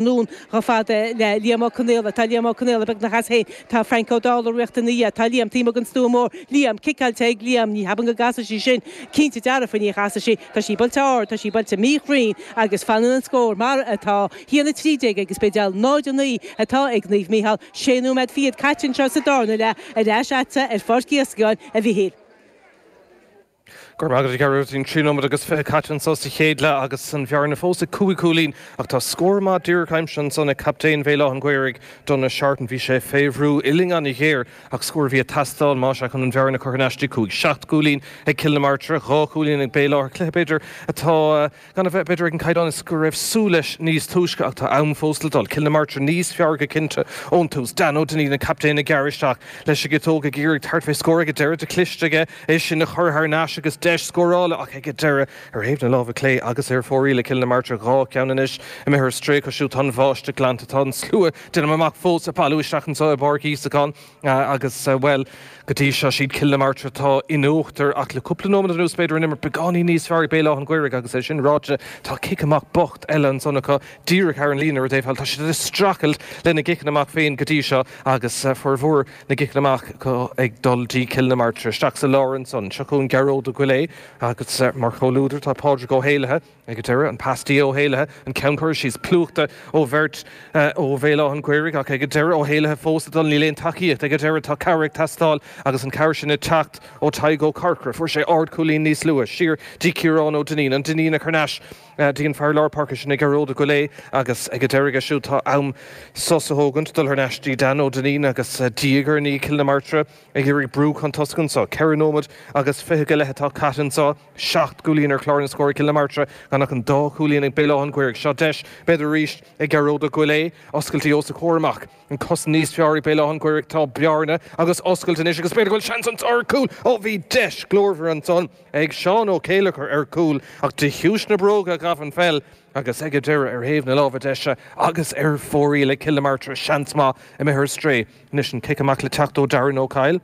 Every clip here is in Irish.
nDún chomh fada le Liam Ó Conaola. Tá Liam Ó Conaola beagnach as féin. Tá Franc Ó Dálaigh ag rith ina dhiaidh. Tá Liam taobh amuigh den stua mór. Liam, ciceáilte ag Liam. Ní cheapainn go gcasfaidh sí sin. Cinnte dearfa ní chasfaidh sí. Tá sí buailte ard. Tá sí buailte míchruinn agus fanann an scór mar atá. 1, 13 agus B'éideal 0, 9 atá ag Naomh Micheál. Sé nóiméad fichead caite anseo sa dárna leath. Ar ais agatsa ar Pháirc Íosagáin, a Mhichíl. Go raibh maith agat a Ghearóidín. Trí nóiméad agus fiche caite anso sa chéad leath agus an bhearna fós ag cúig chúilín ach tá scór maith díreach aimsithe ansan ag captaen Bhéal Átha'n Ghaorthaidh, Donagh Seartan. Bhí sé fé bhrú uillinn an-ghéar ach scór a bhí ag teastáil más ea chun an bhearna a chur thar n-ais. dtí cúig, seacht gcúilín ag Cill na Martra, dhá chúilín ag Béal Átha. Cluiche b'fhéidir, atá. Gan a bheith, b'fhéidir, ag an caighdeán go raibh súil leis níos túisce ach tá am fós le dul. Cill na Martra níos fearr go cinnte ón tús. Dan Ó Duinnín, an captaen, ag gearradh isteach leis an gciotóg, ag iarraidh tabhairt fé scór ag an deireadh. Cliste aige é sin a chur thar n-ais agus deis scórála ach ag an deireadh. Ar thaobh na láimhe clé agus ar fóraoil ag Cill na Martra dhá cheann anois imithe ar strae acu siúd. Tá an bháisteach glanta. Tá an slua déanaim amach fós ag bailiú isteach anseo i bPáirc Íosagáin. Agus, bhuel, go dtí seo is iad Cill na Martra atá in uachtar ach le cúpla nóiméad anuas b'fhéidir an imirt beagáinín níos fearr ag Béal Átha'n Ghaorthaidh agus é sin ráite tá cic amach bocht eile ansan acu díreach thar an líne ar an dtaobh thall. Tá siad ag streachailt lena gciceanna amach féin go dtí seo agus formhór na gciceanna amach acu ag dul dtí Cill na Martra. Isteach sa lár ansan seo chugainn Gearóid Ó Goillé agus mar chomhluadar tá Pádraig Ó hÉalaithe. Ag an deireadh, an pas dtí Ó hÉalaithe, an ceann cur síos plúchta ó bheirt ó Bhéal Átha'n Ghaorthaidh, ach ag an deireadh, Ó hÉalaithe fós ag dul, níl aon tacaíocht. Ag an deireadh, tá cabhair ag teastáil agus an cabhair sin ag teacht ó Tadhg Ó Corcra. Fuair sé ardchúilín níos luaithe, siar dtí Ciarán Ó Duinnín, an Duinnín á chur thar n-ais dtí an fear lár páirce sin ag Gearóid Ó Goilé, agus ag an deireadh aige siúd, tá an sos á thógaint dul thar n-ais dtí Dan Ó Duinnín agus diaidh ar ndiaidh Cill na Martra ag iarraidh brú chun tosaigh anso. Ceithre nóiméad agus fiche go leith atá caite anso. Seacht gcúilín ar chlár na scór ag Cill na Martra, gan ach an dá chúilín ag Béal Átha'n Ghaorthaidh. Seo deis b'fhéidir arís ag Gearóid Ó Goillé. Oscailt é os a chomhair amach, an cosaint níos fearr ag Béal Átha'n Ghaorthaidh. Tá bearna agus oscailt anois agus b'fhéidir go bhfuil seans anso ar chúl. Ó bhí deis glórmhar ansan ag Seán Ó Céilleachair ar chúl, ach de thaobh na bróige ghabh an pheil agus ag an deireadh ar thaobh na láimhe deise agus ar fóraoil ag Cill na Martra seans maith imithe ar strae. Anois an cic amach le teacht ó Darran Ó Cadhla.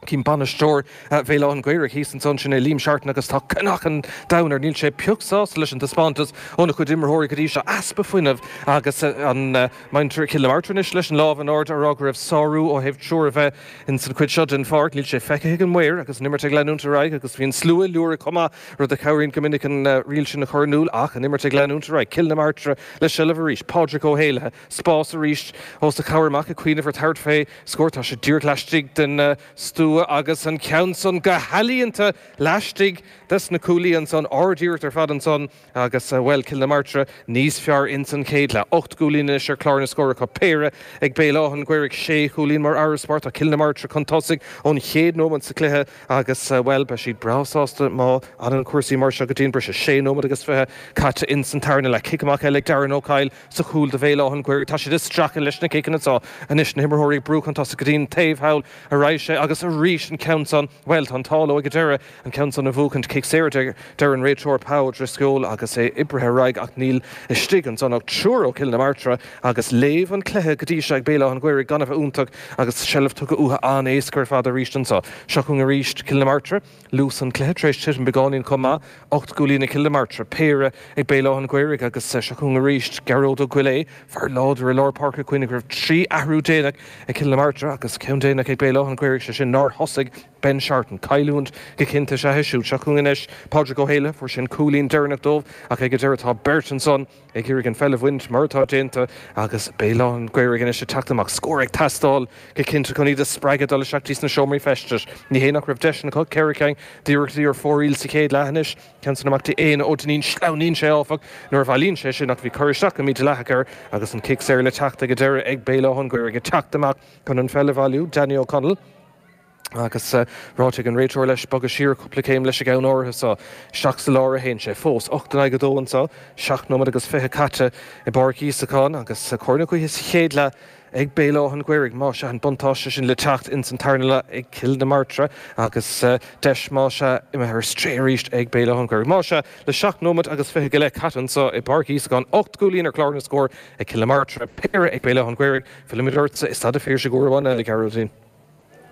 Chím bainisteoir Bhéal Átha'n Ghaorthaidh thíos fúinn ansin é, Liam Seartan, agus tá cnámhseán domhain air. Níl sé pioc sásta leis an dtaispeántas óna chuid imreoirí go dtí seo, easpa fuinnimh agus ansan muintir Chill na Martra anois leis an lámh in airde ag rá go raibh sárú ó thaobh triúr a bheith ins an chuid seo den pháirc. Níl sé feicthe ag an maor agus an imirt ag leanúint ar aghaidh agus bhí an slua ag liúirigh chomh maith, rud a chabhraíonn go minic an riail sin a chur in iúl, ach an imirt ag leanúint ar aghaidh, Cill na Martra le seilbh arís, Pádraig Ó hÉalaithe. spás arís os a chomhair amach ag cuimhneamh ar tabhairt fé scór. Tá sé díreach laistigh den stua agus an ceann san go healaíonta laistigh des na cuaillí ansan. Ardiarracht ar fad ansan agus, bhuel, Cill na Martra níos fearr insan chéad leath. Ocht gcúilín anois ar clár na scór acu, péire ag Béal Átha'n Ghaorthaidh, sé chúilín mar fharasbarr. Tá Cill na Martra chun tosaigh ón chéad nóimeant sa chluiche agus, bhuel, beidh siad breá sásta má fhanann cúrsaí mar seo go dtí an briseadh. Sé nóimeant agus fiche caite insan tarna leath. Cic amach eile ag Darren Ó Coill. sa chúl do Bhéal Átha'n Ghaorthaidh. Tá siad ag streachailt leis na ciceanna seo anois, na himreoirí ag brú chun tosaigh go dtí an taobh thall a raghaidh sé agus arís an ceann san, bhuel tá an t-ádh leo ag an deireadh an ceann san a bhuachaint. Cic saor a deir an réiteoir Pa Ó Drisceoil agus é oibrithe ar aghaidh ach níl istigh ansan ach triúr ó Chill na Martra agus léamh an cluiche go dtí seo ag Béal Átha'n Ghaorthaidh gan a bheith iontach agus seilbh tugtha uatha an-éasca ar fad arís anso. Seo chugainn arís Cill na Martra. Luas an chluiche tar éis titim beagáinín chomh maith, ocht gcúilín ag Cill na Martra, péire ag Béal Átha'n Ghaorthaidh agus seo chugainn arís Gearóid Ó Goillidhe, fear láidir i lár páirce Cuimhnigh go raibh trí athrú déanach ag Cill na Martra agus ceann déanach ag Béal Átha'n Ghaorthaidh, sé sin nár thosaigh Ben Seartan. Cailliúint go cinnte is ea é siúd. Seo chugainn anois Pádraig Ó hÉalaithe, fuair sé an cúilín deireanach dóibh ach ag an deireadh tá beirt ansan, ag iarraidh an pheil a bhaint mar atá déanta agus Béal Átha'n Ghaorthaidh anois ag teacht amach, scór ag teastáil go cinnte chun iad a spreagadh dul isteach go dtí sna seomraí feistis. Ní hé nach raibh deiseanna acu ceithre ceann d'iarrachtaí ar fóraoil sa chéad leath anois, ceann san amach go dtí Éanna Ó Duinnín, sleamhnaíonn sé áfach nuair a bhailíonn sé sin ach bhí cur isteach go mídhleathach air agus an cic saor le teacht ag an deireadh ag Béal Átha'n Ghaorthaidh ag teacht amach chun an pheil a bhailiú, Danny Ó Conaill. Agus ráite ag an réiteoir leis bogadh siar cúpla céim leis an gceann áirithe seo, isteach sa lár a théann sé fós. Ocht in aghaidh a dó anseo, seacht nóiméad agus fiche caite i bPáirc Íosagáin agus cóir na gaoithe sa chéad leath ag Béal Átha'n Ghaorthaidh. Más ea an buntáiste sin le teacht ins an tarna leath ag Cill na Martra agus deis, más ea, imithe ar strae arís ag Béal Átha'n Ghaorthaidh. Más ea, le seacht nóiméad agus fiche go leith caite anseo i bPáirc Íosagáin, ocht gcúilín ar chlár na scór ag Cill na Martra, péire ag Béal Átha'n Ghaorthaidh, fillimid ortsa i Staid a' Phiarsaigh uair amháin eile, Gearóidín.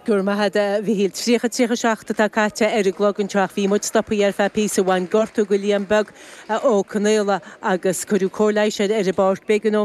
Go raibh maith agat, a Mhichíl. 30, 37 atá caite ar an gclog anseo ach bhí muid stoptha ar feadh píosa bhain gortú do Liam Beag Ó Conghaile agus cuireadh cóir leighis air ar an bpáirc. B'éigean dhó.